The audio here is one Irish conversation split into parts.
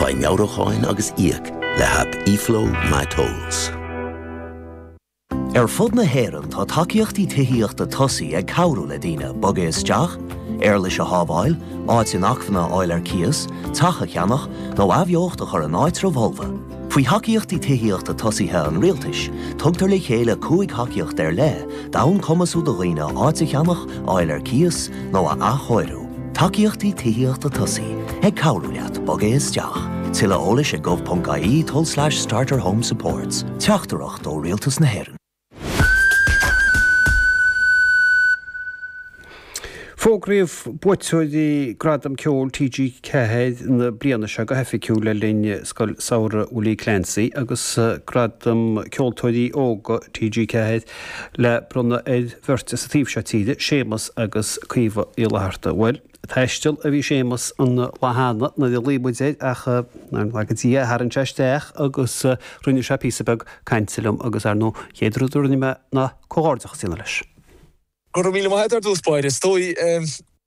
Faigh meabhrúcháin agus íoc le haip eFlow MyTolls. Ar fud na hÉireann tá tacaíochtaí tithíochta Tosaigh ag cabhrú le daoine bogadh isteach, éarlais a shábháil, áit inacmhainne a fháil ar cíos, teach a cheannach, nó athbheocht a chur in áitribh fholmha. Faoi thacaíochtaí tithíochta tosaithe an Rialtais, tugtar le chéile cúig thacaíocht ar leith d'fhonn cumasú do dhaoine áit a cheannach, a fháil ar cíos, nó a athchóiriú. Tacaíochtaí Tithíochta Tosaigh ag cabhrú leat bogadh isteach. Tuilleadh eolais ag gov.ie tulslais starterhomesupports. Teachtaireacht ó Rialtas na hÉireann. Fógraíodh buaiteoirí Gradam Ceoil TG4 na bliana seo go hoifigiúil le linn Scoil Samhraidh Willie Clancy agus Gradam Ceoltóirí Óga TG4 le bronnadh ar bheirt as an taobh seo tíre, Séamus agus Caoimhe Uí Fhlatharta. Bhuel, ag taisteal a bhí Séamus an lá cheana, nuair a ghlaoigh muid air, ach, nár laga Dia é, tharraing sé isteach agus rinne sé píosa beag cainte liom, agus, ar ndóigh, an chéad rud a rinne mé ná comhghairdeachas a dhéanamh leis. Go raibh míle maith agat ar dtús báire. Is dóigh,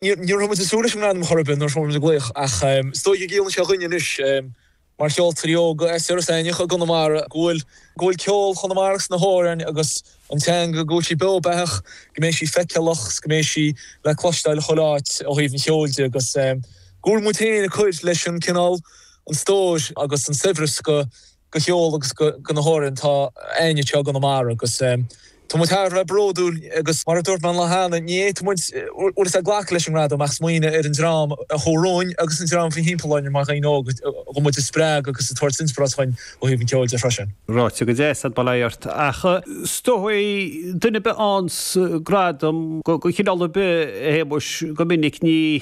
ní raibh muid ag súil leis an ngradam chor ar bith nuair a fuair muid an glaoch, ach is dóigh go gciallaíonn sé dhúinne anois. Mar cheoltóirí óga, as Iorras Aithneach i gConamara go bhfuil ceol Chonamara is na hamhráin agus an teanga, go bhfuil sí beo beathach, go mbeidh sí feiceálach 's go mbeidh sí le cloisteáil chuile áit ó thaobh an cheoil de agus go bhfuil muid féin ag cur leis an cineál, an stór agus an saibhreas de cheol agus de na hamhráin atá againne anseo i gConamara agus. Tá muid thar a bheith bródúil agus, mar a dúirt mé an lá cheana, ní fhéadfadh muid bhfuil a fhios agat glacadh leis an ngradam ach smaoineamh ar an dream a chuaigh romhainn agus an dream a bhí thimpeall orainn mar dhaoine óga chun muid a spreagadh agus ag tabhairt inspioráid chugainn ó thaobh an cheoil de freisin. Ráite go deas agat, bail ó Dhia ort, ach is dóigh duine ar bith a fhaigheanns gradam de chineál ar bith a Shéamuis go minic ní.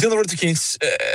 déanamh rud eicínt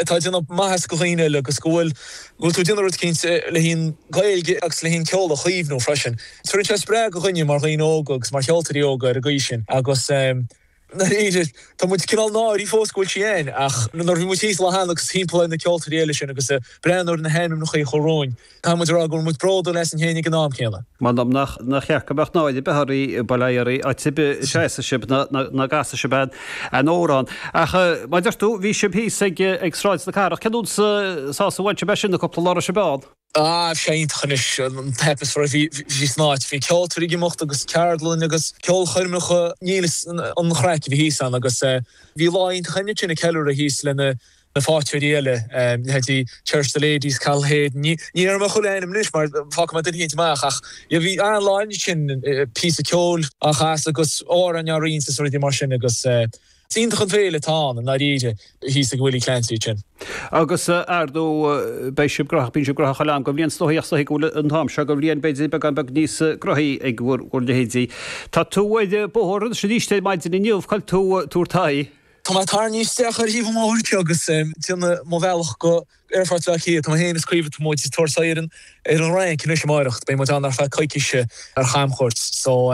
atá ag déanamh maitheas do dhaoine eile agus go bhfuil go bhfuil tú ag déanamh rud eicínt le haghaidh an Ghaeilge agus le haghaidh an ceol a chaomhnú freisin. Tugann sé spreagadh dhúinne mar dhaoine óga agus mar cheoltóirí óga ar an gcaoi sin agus ehm i ndáiríre tá muid cineál náirithe fós go bhfuil sé againn ach nuair a bhí muid thíos an lá cheana agus thimpeall ar na ceoltóirí eile sin agus ag breathnú ar na hainmneachaí a chuaigh romhainn Caithfidh muid a rá go bhfuil muid bródúil asainn féin ag an am céanna. M'anam nach ceart go mbeadh náire ar bith oraibh bail ó Dhia oraibh áit ar bith a seasfaidh sibh ná a gcasfaidh sibh aon aon amhrán ach mar a deir tú bhí sibh thíos ag ag Sráid na Cathrach cén sórt sásamh a bhain sibh as sin na cúpla lá a raibh sibh ann? Á, bhí sé iontach anois an t-atmaisféar a bhí bhí san áit, bhí ceoltóirí ag imeacht agus ceardlanna agus ceolchoirmeacha níl a fhios an an chraic a bhí thíos ann agus eh bhí lá iontach anois ag ceiliúradh thíos le na na ceoltóirí eile, leithéidí Cherish the Ladies, Cathal Hayden, ní déarfaidh mé chuile ainm anois mar fágfaidh mé duine éigin amach ach bhí an lá ansin píosa ceoil á chasadh agus amhráin á roinnt is rudaí mar sin agus is iontach an féile atá ann i ndáiríre thíos ag Willie Clancy ansin. Agus ar ndóigh beidh sibh graitheach, bíonn sibh graitheach chuile am den bhliain is dóichí, is dóigh go bhfuil an t-am seo den bhliain b'fhéidir beagán beag níos graitheaí ag bhur leithéidí. Tá tú ar bóthar anois arís ar maidin inniu, cá bhfuil tú ag tabhairt d'aghaidh? Tá mé tarraingthe isteach ar thaobh an bhóthair anseo agus ag déanamh mo bhealach go hAerfort Bhaile Átha Cliath. Tá mé féin is Caoimhe Tá muid ag tabhairt aghaidh ar an Fhrainc anois amáireach. Beidh muid ann ar feadh coicíse ar chamchuairt. So,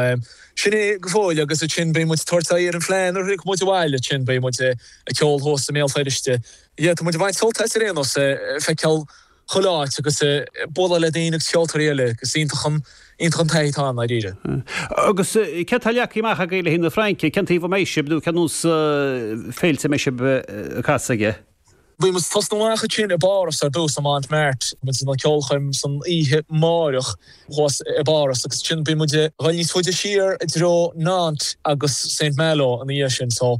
sin é go fóill agus ansin beidh muid ag tabhairt aghaidh ar an bhFleadh nuair a thiocfaidh muid abhaile. Ansin beidh muid ag ceol thuas i mBéal Feirste. Yeah, tá muid ag baint sult as ar aon nós, ag feiceáil. chuile áit agus ag bualadh le daoine agus ceoltóirí eile. Is iontach an, iontach an taithí atá ann, i ndáiríre. Agus céard atá leagtha amach agaibh le haghaidh na Fraince? Cén taobh a mbeidh sibh nó cén nós féilte a mbeidh sibh ag casadh aige? Beidh muid ag tosnú amach ansin i bPáras ar dtús, i Montmartre. Beidh muid ag déanamh ceolchoirm san oíche amáireach thuas i bPáras agus ansin beidh muid ag dul níos faide siar i dtreo Nantes agus Saint Malo ina dhiaidh sin.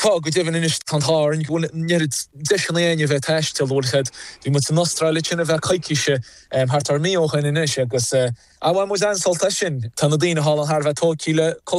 Tá, go deimhin. Anois, tá an t-ádh orainn go bhfuil an oiread deiseanna againn a bheith ag taisteal, bhuel, chead, bhí muid san Astráil ansin ar feadh coicíse thart ar mí ó shin anois agus, ah, bhain muid an-sult as sin. Tá na daoine thall ann thar a bheith tógtha le cultúr na.